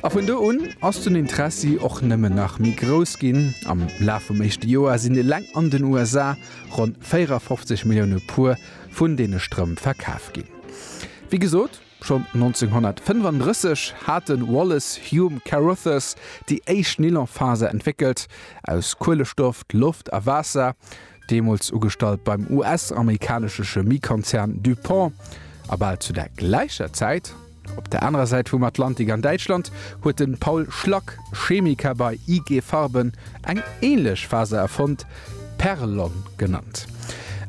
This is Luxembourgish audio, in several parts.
A vun do un ass den Interessi och nëmmen nach méi grouss ginn. Am Laf vum éischte Joer sinn eleng an den USA ronn 54 Millioune Puer vun deene Strëmp verkaf ginn. Wéi gesot, schonn 1935 hat de Wallace Hume Carothers déi éischt Nylonfaser entwéckelt, aus Kuelestoff, Loft a Waasser. deemools ugestallt beim US-amerikanesche Chemiekonzern DuPont, a bal zu der gläicher Zäit, op der anerer Säit vum Atlantik an Däitschland, huet de Paul Schlack, Chemiker bei IG Farben, eng änlech Faser erfonnt, Perlon genannt.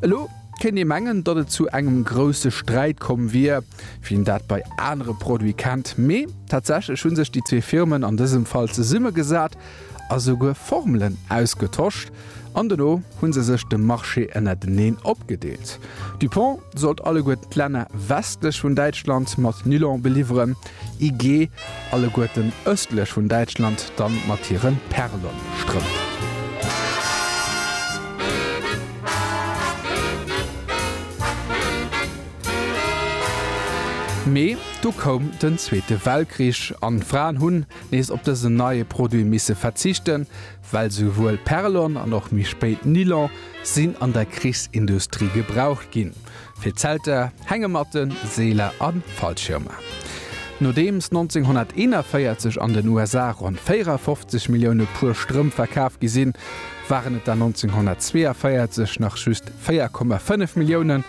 Elo kéint ee mengen, datt et zu engem grousse Sträit komm wier, wéi een dat bei anere Produite kennt, mee tatsächlech hu sech déi zwee Firmen an dësem Fall zesummegesat, a souguer Formelen ausgetosch an dono hu se sech de Marché ënnerteneen opgedeelt. Dupont sollt alleguerten d'Länner westlech vun Däitschland mat Nylon beliwweren, IG alleguerten ëstlech vun Däitschland dann mat hire Perlon-Strëmp. Mee du koum den Zweete Weltkrich an d'Fraen hunn, nees op dësen neie Produit misse verzichten, well souwuel Perlon an och méi spéit Nylon sinn an der Krichsindustrie gebraucht ginn, fir Zelter, Hängematten, Seeler a Fallschirmer. Nodeems 1941 an den USA ronn 54 Millioune Puer Strëmp verkaf gi sinn, waren et der 1942 nach just 4,5 Milliounen,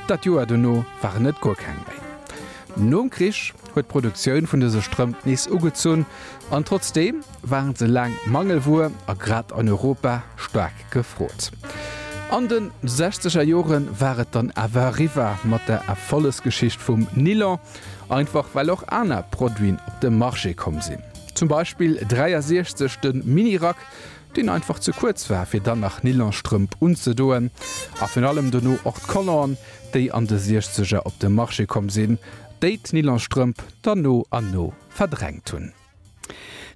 dat Joer dono waren et guer keng méi. Nom Krich, huet d'Produktioun vun dëse Strëmp nees ugezunn an trotzdeem waren se laang Mangelwuer a grad an Europa staark gefrot. An de sechzeger Jore war et dann awer eriwwer mat der Erfollegsgeschicht vum Nilon, einfach well och aner Produiten op de Marché komm sinn. Zum Beispill 63 de Mini-Rack, deen einfach ze kuerz war fir dann nach Nylonstrëmp unzedoen, a virun allem dono och d'Color'en déi an de Siechzeger op de Marché komm sinn, déi d'Nylonstrëmp dann no an no verdrängt hunn.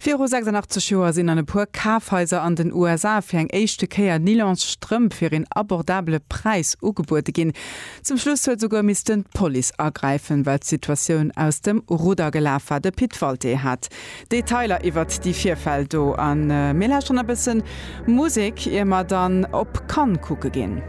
Viru 86 Joer sinn an e puer Kafhaiser an den USA fir eng éischte Kéier Nylonsstrëmp fir een abordabele Präis ugebuede ginn. Zum Schluss huet souguer missten d'Police agräifen, well d'Situatioun aus dem Rudder gelaf war. De Pit Walté hat Detailer iwwert déi Virfäll do a mir lauschteren e bësse Musek, ier mer dann op Cannes kucke ginn.